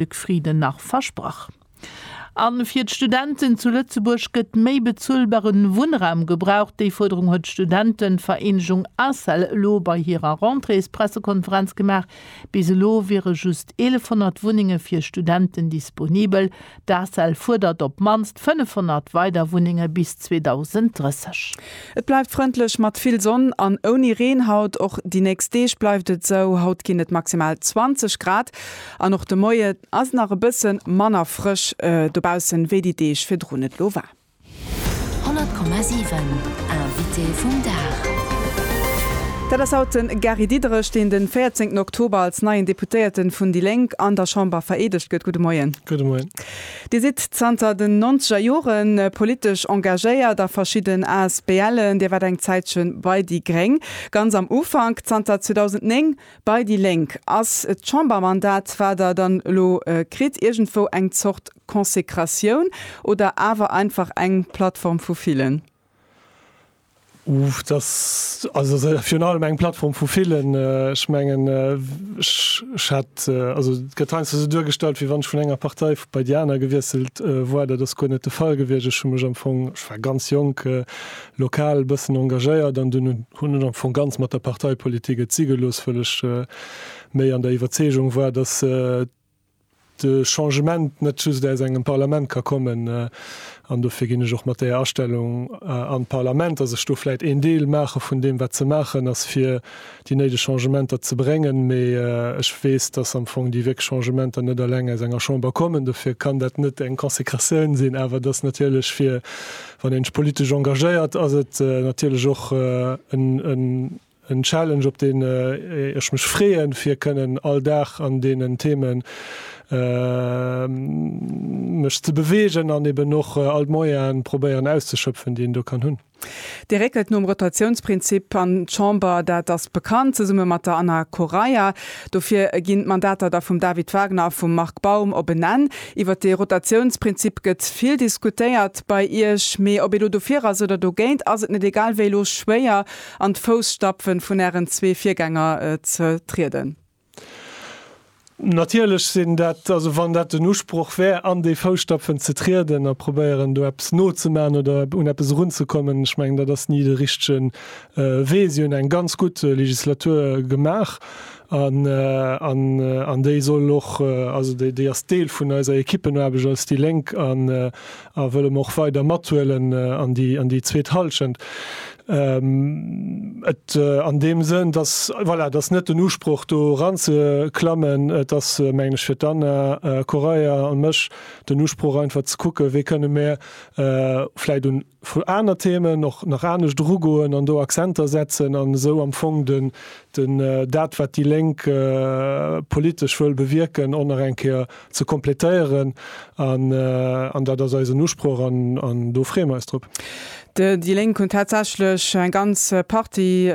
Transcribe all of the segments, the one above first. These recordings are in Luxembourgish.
Luc Frieden nach versprach. A fir d'Studenten zu Lëtzebuerg gëtt méi bezuelbaren Wunnraum gebraucht. Déi Fuerderung huet d'Studentenvereenegung ACEL elo bei hirer Rentréespressekonferenz gemaach. Bis elo wiere just 1.100 Wunnenge fir Studenten disponibel. D'ACEL fuerdert op d'mannst 500 weider Wunnenge bis 2030. Et bleift frëndlech mat vill Sonn an ouni Reen haut. Och déi nächst Deeg bleift et esou, haut ginn et maximal 20 Grad. An och de Moie ass nach e bësse manner frësch dobaussen, wéi déi Deeg virdrun et lo war. 100,7 Invité vum Dag. Dat ass haut de Gary Diderich, deen de 14 Oktober als neien Deputéierte vun déi Lénk an der Chamber vereedegt gëtt. Gudde Moien. Gudde Moien. Dir sidd zanter den nonzeger Jore politesch engagéiert a verschidden ASBLen. Dir waart eng Zäitche bei déi gréng, ganz am Ufank. Zanter 2009 Bei déi Lénk ass d'Chambermandat, wat Der dann elo kritt, iergendwou eng Zort Konsekratioun oder awer einfach eng Plattform vu villen? Et ass virun allem eng Plattform vu villen. Ech mengen, ech hat, also et gëtt heiansdo esou duergestallt, wéi wann ech vun enger Partei bei déi aner gewiesselt woar. Dat ass guer net de Fall gewiescht. Ech hu mech am Fong, ech war ganz jonk, lokal bëssen engagéiert an dunn hunn ech am Fong ganz mat der Parteipolitik et si gelooss, wëll ech méi an der Iwwerzeegung war, dass de Changement net just aus engem Parlament ka kommen an dofir ginn ech och mat där Astellung an d'Parlament, dass ech do vläit een Deel maache vun deem wat ze maachen ass fir déi néideg Changementer ze bréngen, mee ech weess, dass am Fong déi wierklech Changementer net alleng aus enger Chamber kommen, dofir kann dat net eng Consécratioun sinn, awer dass natierlech fir Wann een sech politesch engagéiert, ass et natierlech och en Challenge, op deen ech mech freeën, fir kënnen all Dag an deenen Theeme mech ze beweegen an eben och all d'Moyene probéieren auszeschöpfen, déi een do kann hunn. Dir réckelt nom Rotatiounsprinzip an d'Chamber, dat ass bekannt, zesumme mat der Anna Correia. Dofir ginn d'Mandater da vum David Wagner a vum Marc Baum op en Enn. Iwwer dee Rotatiounsprinzip gëtt vill diskutéiert bei Iech, mee ob ee lo dofir ass oder dogéint, ass et net egal wéi elo schwéier an d'Fousstapfen vun Ären zwee Virgänger ze trieden? Natierlech sinn dat, also wann dat den Usproch wär, an déi Fousstapfen ze trieden a probéieren do eppes nozemaachen oder un eppes erunzekommen. Ech mengen dat ass ni de richtegen Wee, si hunn eng ganz gutt Legislatur gemaach an déi soll och, also déi ass Deel vun eiser Ekippenaarbecht als déi Lénk a wëlle mer och weider mathuelen an déi zweet Hallschent. Et an deem Sënn, dass, voilà, et ass net den Usproch do eranzeklammen, et ass, mengen ech, fir d'Anna Correia an mech den Usproch einfach ze kucken, wéi kënne mer vläicht un, Vu aner Themen och nach anescht erugoen an do Akzenter setzen an esou am Fong den, den, dat wat déi Lénk politesch wëll bewierken och nach eng Kéier ze kompletéieren an, an dat ass eisen Usproch an, an do freeë mer eis drop. Déi Lénk hunn tatsächlech eng ganz Partie.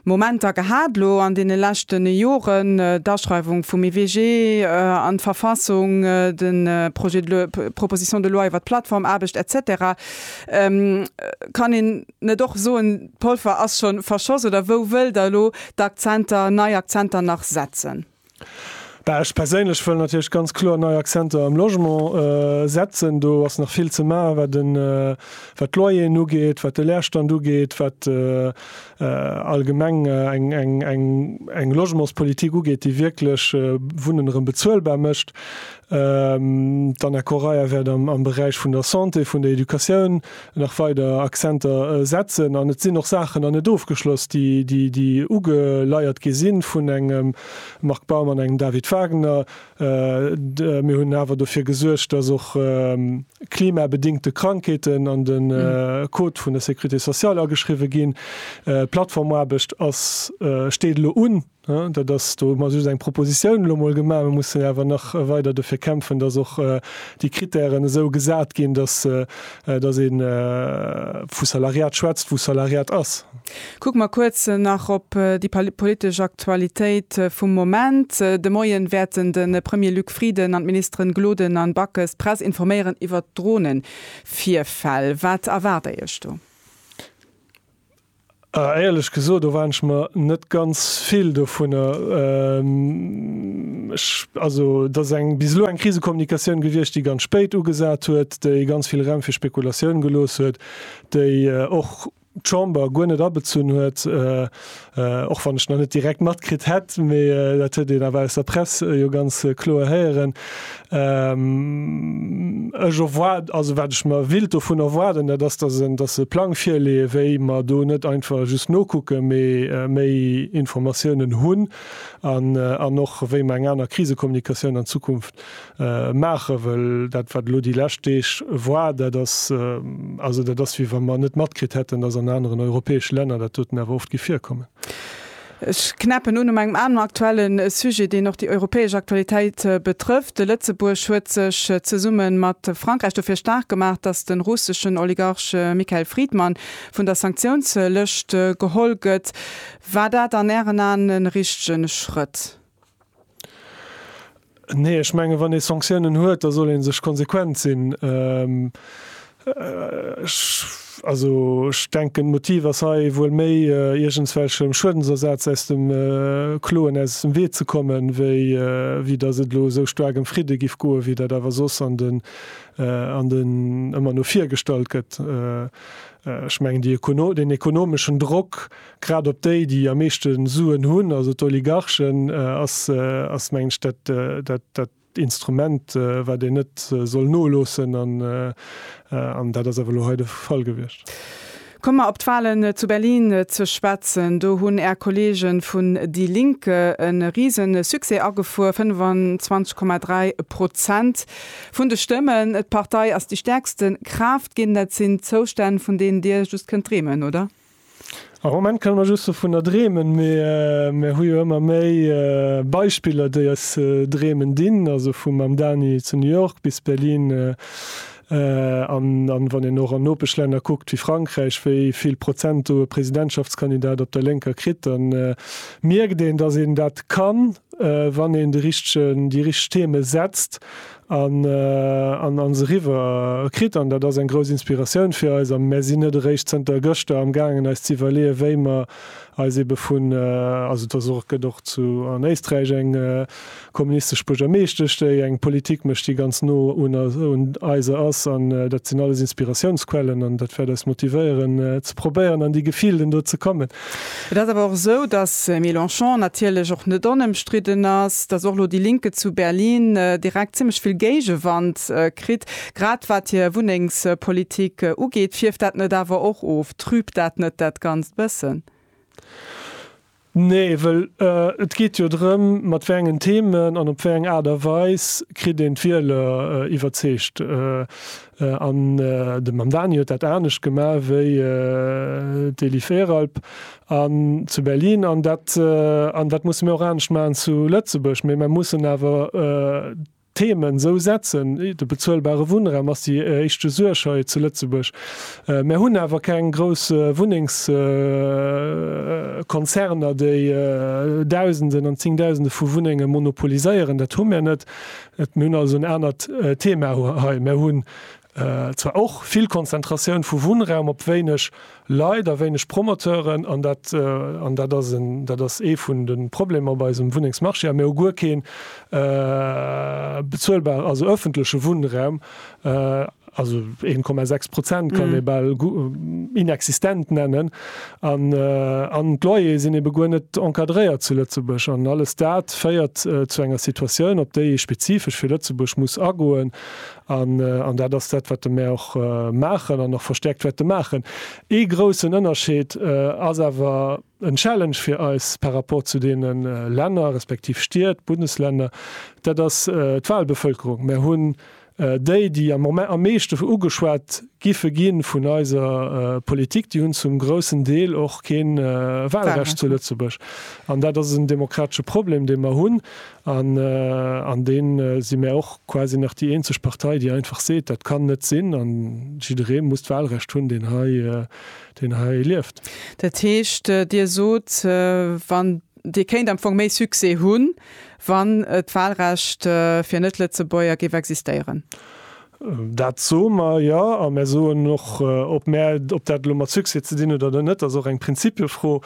Momenter gehat elo an deene leschten Joren, d'Aschreiwung vum EWG an d'Verfassung, de Projet de loi, d'Proposition de loi iwwert d'Plattformaarbecht et cetera. Kann een net och soen, d'Polver ass scho verschoss? Oder wou wëllt Der elo d'Akzenter, nei Akzenter nach setzen? Ech perséinlech wëll natierlech ganz kloer nei Akzenter am Logement setzen. Do ass nach vill ze maachen, wat den, wat d'Loyeren ugeet, wat de Leerstand ugeet, wat allgemeng eng, eng, eng, eng Logementspolitik ugeet, déi wierklech Wunnen erëm bezuelbar mécht. D'Anna Correia wäert am, am Beräich vun der Santé, vun der Educatioun, nach weider Akzenter setzen an et sinn och Saachen nach net ofgeschloss, déi ugeleiert gi si vun engem Marc Baum an engem David Wagner. Mir hunn awer dofir gesuergt, dass och klimabedingte Krankheeten an de Code vun der Sécurité sociale ageschriwwen ginn. D'Plattformaarbecht steet elo un. Dat ass, do hu mer just eng Propositioun elo mol gemaach. Mir mussen awer nach weider dofir kämpfen, dass och déi Krittären esou gesat ginn, dass ee vu Salariat schwätzt, wou Salariat ass. Kucke mer kuerz nach op déi politesch Aktualitéit vum Moment. De Moien wäerten de Premier Luc Frieden an d'Ministeren Gloden an Backes d'Press informéieren iwwert Dronevirfäll. Wat erwaart Dir Iech do? Éierlech gesot erwaarden ech mer net ganz vill dovunner. Also et ass bis elo eng Krisekommunikatioun gewiescht, déi ganz spéit ugesat huet, déi ganz vill Raum fir Spekulatioun gelooss huet, déi och d'Chamber guer net abezunn huet, och wann ech nach net direkt matkritt hätt, mee dat huet een awer aus der Press jo ganz kloer héieren, Ech erwaarden, also wat ech mer wild dovun erwaarden, dat ass, dass en, dass se e Plang virleeën, wéi mer do net einfach just nokucken, mee méi Informatiounen hunn an, an och wéi mer eng aner Krisekommunikatioun an Zukunft maachen. Well dat, wat elo déi lescht Deeg war, dat ass, also dat ass, wéi wa mer net matkritt hätten, dass an aneren europäesche Länner dat doten awer oft géif virkommen. Ech knäppen un um engem aneren aktuelle Sujet, deen och déi europäesch Aktualitéit betrëfft. Lëtzebuerg huet sech zesumme mat Frankräich dofir staark gemaach, datt de russeschen Oligarch Mikhail Fridman vun der Sanktiounslëscht geholl gëtt. War dat an Ären Aen e richtegen Schrëtt? Nee, ech mengen, wann ee Sanktiounen huet, da soll ee sech konsequent sinn. Ech, also ech denken, d'Motiv ass hei wuel méi, iergendswelchem Schuedensersaz aus dem Kloen aus dem Wee ze kommen, wéi wéi datt et elo esou staark ëm Fridde giff goen, wéi dat awer soss an den an den ëmmer no vir gestallt gëtt. Ech mengen, déi den ekonomeschen Drock Grad op déi, déi am meeschte Suen hunn, also d'Oligarchen, ass, mengen ech, dat dat Instrument, wat een net soll noloossen. An dat ass awer elo hei de Fall gewiescht. Komme mer op d'Wahlen zu Berlin ze schwätzen. Do hunn Är Kolleege vun déi Linke e Riesensuccès agefuer, 25,3 Prozent vun de Stëmmen. D'Partei ass déi stäerkste Kraaft ginn. Dat sinn Zoustänn, vun deenen Dir just kënnt dreemen, oder? Am Moment kënne mer just dovunner dreemen, mee mer hu jo ëmmer méi Beispiller, déi eis dreemen dinn, also vum Mam Dani zu New York bis Berlin an wann een och an Nopeschlänner kuckt wéi Frankräich, wéi vill Prozent do e Presidentschaftskandidat op der Lénker kritt, da mierkt een, datt een dat kann, wann een de richtegen, déi richteg Theme setzt An an se riwwer kritt. An dat ass eng grouss Inspiratioun fir eis. A mär sinn net eréischt zënter gëschter am gaangen eis ze iwwerleeë wéi mer eis ebe vun, also et ass och, gëtt och zu an Éisträich eng kommunistesch Buergermeeschtesch déi eng Politik mécht déi ganz no un eiser ass. An dat sinn alles Inspiratiounsquellen an dat wäert eis motivéieren ze probéieren an déi Gefilden do ze kommen. Et ass awer och esou, datt Mélenchon natierlech och net onëmstridden ass, datt och elo déi Linke zu Berlin direkt zimmlech vill Géigewand kritt, grad wat hir Wunnengspolitik ugeet. Fierft dat net awer och of? Trübt dat net dat Ganzt e bëssen? Nee, well et geet jo drëm, mat wéi engen Themen an op wéi eng Aart a Weis kritt een d'Wieler iwwerzeegt. An de Mamdani huet dat anescht gema wéi d'Eli Veralp zu Berlin. An dat musse mir och anescht maachen zu Lëtzebuerg. Mee mer mussen awer d'Themen esou setzen. De bezuelbare Wunnraum ass déi éischte Suerg hei zu Lëtzebuerg. Mer hunn awer keng grouss Wunnengskonzerner, déi Dausenden an Zéngdausende vu Wunnenge monopoliséieren. Dat hu mer net. Mir hunn also en anert Thema hei. Mir hunn zwar och vill Konzentratioun vu Wunnraum op wéineg Leit a wéineg Promoteuren, an dat ass en, dat ass ee vun de Problemer op eisem Wunnengsmarché. A mir hu guer kee bezuelbaren, also öffentleche Wunnraum. also 1,6 Prozent kann ee bal inexistent nennen, an an d'Loyere sinn ebe guer net encadréiert zu Lëtzebuerg. An alles dat féiert zu enger Situatioun, op déi ee spezifesch fir Lëtzebuerg muss agoen, an an dat ass dat, wat de mer och maachen an och verstäerkt wäerte maachen. Ee groussen Ënnerscheed ass awer en Challenge fir eis par rapport zu deene Länner, respektiv Stied, Bundesländer, dat ass d'Walbevëlkerung. Mer hunn Déi, déi am Moment am meeschten ugeschwat giffe ginn vun eiser Politik, déi hunn zum groussen Deel och kee Wahlrecht zu Lëtzebuerg. An dat ass en demokratesche Problem, dee mer hunn. An an deem si mär och quasi nach déi eenzeg Partei, déi einfach seet, dat kann net sinn a jidderee muss d'Wahlrecht hunn, deen hei, deen hei lieft. Dat heescht, Dir sot, wann Dir kéint am Fong méi Succès hunn, Wann d'Wahlrecht fir Net-Lëtzebuerger géif existéieren? Dat soe mer jo. A mir soen och, ob mir, ob dat elo mat Succès ze dinn huet oder net, ass och eng Prinzipiefro.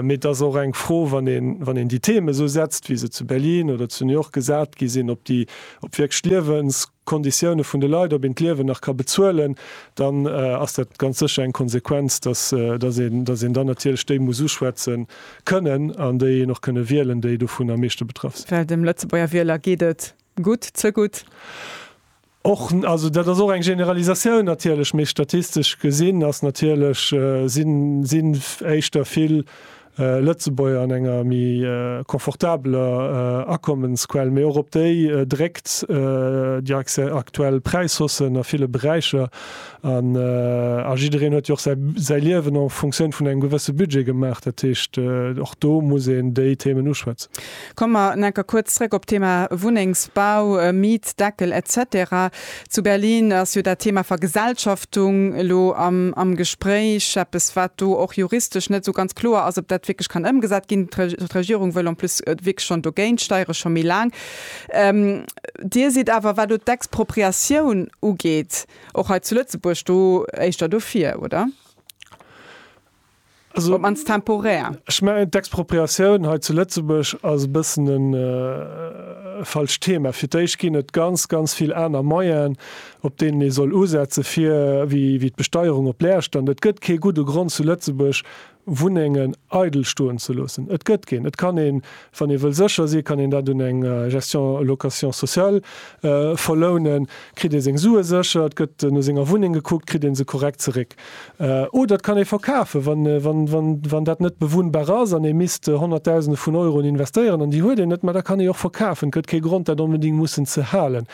Mee et ass och eng Fro, wann een, wann een déi Themen esou setzt, wéi se zu Berlin oder zu New York gesat gi sinn, ob déi, ob wierklech liewens, Konditioune vun de Leit, ob een d'Liewen nach ka bezuelen, dann ass dat ganz sécher eng Konsequenz, dass een, dass een dann natierlech déi muss uschwätze kënnen an déi een och kënne wielen, déi dovun am meeschte betraff sinn. Well dem Lëtzebuerger Wieler geet et gutt, ze gutt. Och, also dat ass och eng Generalisatioun natierlech, mee statistesch gesinn ass natierlech, sinn, sinn éischter vill Lëtzebuerger an enger méi confortabeler Akommensquell, mee och op déi dréckt déi aktuell Präishaussen a ville Beräicher. A jiddereen huet jo och säi Liewen en Fonctioun vun engem gewësse Budget gemaach. Dat heescht, och do muss een déi Themen uschwätzen. Komme mer en enker kuerz zréck op d'Thema Wunnengsbau, Mietdeckel, etc. Zu Berlin ass jo dat Thema Vergesellschaftung elo am Gespréich, eppes wat do och juristesch net esou ganz kloer ass, ob dat wierklech kann ëmgesat ginn. D'Regierung wëll en plus wierklech schonn dogéint steiere scho méi laang. Dir sidd awer, wat elo d'Expropriatioun ugeet, och hei zu Lëtzebuerg do éischter dofir, oder? op mannst temporär. Ech mengen, d'Expropriatioun hei zu Lëtzebuerg ass e bëssen e falscht Thema. Fir d'éischt ginn et ganz, ganz vill aner Moyenen, op deenen ee soll usetzen, fir, wéi d'Besteierung op Lärstern. Et gëtt kee gudde Grond, zu Lëtzebuerg Wunnengen eidel stoen ze loossen. Et gëtt keen. Et kann een, wann ee wëll sécher sinn, kann een dat un eng Gestion location sociale verlounen, kritt ee seng Sue sécher, et gëtt no senger Wunneng gekuckt, kritt ee se korrekt zeréck. Oder et kann ee verkafen, wann dat net bewunnbar ass an ee misst honnertdausende vun Euroen investéieren an déi huet een net, mä da kann ee och verkafen. Et gëtt kee Grond, dat onbedéngt mussen ze halen.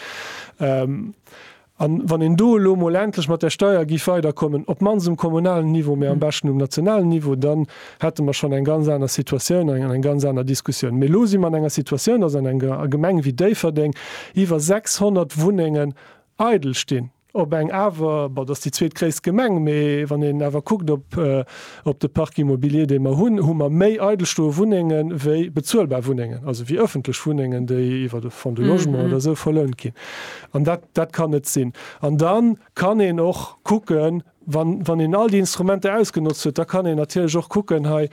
A wann een do elo emol endlech mat där Steuer géif weiderkommen, op d'mannst um kommunalen Niveau, mä am beschten um nationalen Niveau, dann hätte mer schonn eng ganz aner Situatioun an eng ganz aner Diskussioun. Mee elo si mer an enger Situatioun, dass an enger Gemeng wéi Déifferdeng iwwer 600 Wunnengen eidel stinn. Op eng awer, bon, dat ass déi zweetgréisst Gemeng, mee wann een awer kuckt op de Parc immobilier, dee mer hunn, hu mer méi eidel stoe Wunnenge wéi bezuelbar Wunnengen, also wéi ëffentlech Wunnengen, déi iwwer de Fonds du logement oder esou verlount ginn. An dat, dat kann net sinn. An da kann een och kucken, wann, wann een all déi Instrumenter ausgenotzt huet, da kann een natierlech och kucken hei,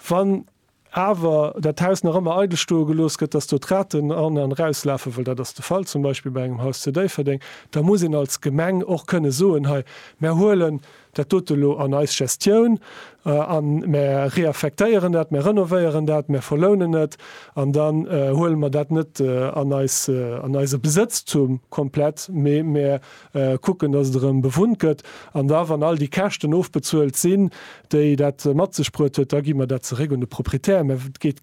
wann awer dat Haus nach ëmmer eidel stoe gelooss gëtt, dass do d'Raten an an erauslafen, well dat ass de Fall zum Beispill bei engem Haus zu Déifferdeng, da muss een als Gemeng och kënne soen, hei mär huelen dat dote lo an eis Gestioun an mär reaffektéieren dat, mär renovéieren dat, mär verlounen et an dann huele mer dat net an eis, an eise Besëtztum komplett, mee mär Kucken, dass et erëm bewunnt gëtt. An da, wann all déi Käschten ofbezuelt sinn, déi dat mat sech bruet huet, da gi mer dat zeréck un de Proprietär. Mä et geet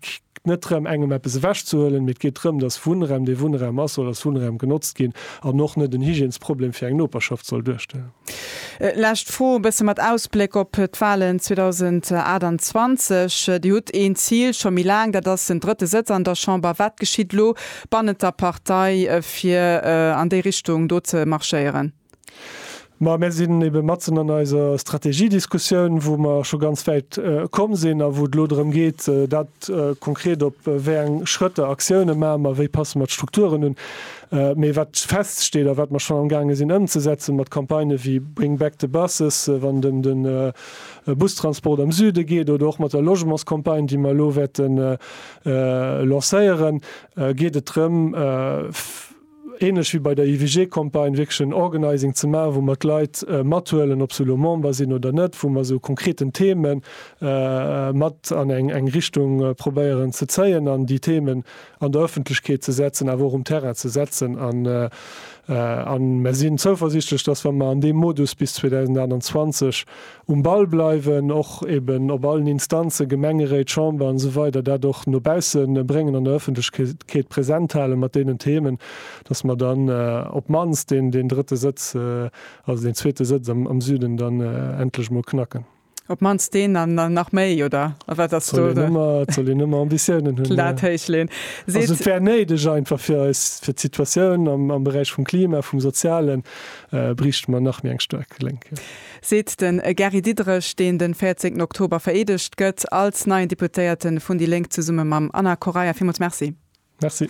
net drëm, engem eppes ewechzehuelen, mee et geet drëm, dass Wunnraum, dee Wunnraum ass, soll als Wunnraum genotzt ginn an och net en Hygiènesproblem fir eng Noperschaft soll duerstellen. Lescht Fro, e bësse mat Ausbléck op d'Wahlen 2028. Dir hutt een Zil scho méi laang, dat ass den drëtte Sëtz an der Chamber. Wat geschitt elo? bannent der Partei, fir an déi Richtung do ze marschéieren? Ma mir sinn ebe matzen an eiser Strategiediskussioun, wou mer scho ganz wäit komm sinn a wou et elo drëm geet, dat konkret, op wéi eng Schrëtter, Aktiounen maache mer, wéi passe mer d'Strukturen un. Mee wat feststeet a wat mer schonn amgaange sinn ëmzesetzen, mat Campagnë wéi Bring back the buses, wann et ëm de Bustransport am Süde geet, oder och mat der Logementscampagne, déi mer elo wäerte lancéieren, geet et drëm, ähnlech wéi bei der IWG-Campagne, wierklech en Organizing ze maachen, wou mer d'Leit mathuelen, ob se elo Member sinn oder net, wou mer se u konkreten Themen mat an eng Richtung probéieren ze zéien an déi Themen an der Öffentlechkeet ze setzen, awer och um Terrain ze setzen. A mer sinn zouversiichtlech, dass, wa mer an deem Modus bis 2028 Um Ball bleiwen, och eben op allen Instanzen, Gemengeréit, Chamber an esou weider, dat och no bausse bréngen, an der Öffentlechkeet present halen mat deenen Themen, dass mer dann op d'mannst deen drëtte Sëtz, also deen zweete Sëtz am Süden dann endlech emol knacken. Op d'mannst deen an nach méi, oder? A wat ass do de. Et soll een ëmmer Ambitiounen hunn. D'Lat héich leeën. Also et wär néideg einfach fir eis, fir d'Situatioun am Beräich vum Klima, vum Sozialen, bräichte mer nach méi eng staark Lénk, jo. seet den Gary Diderich, deen de 14 Oktober vereedegt gëtt als neien Deputéierte vun déi Lénk, zesumme mam Anna Correia. Villmools Merci. Merci.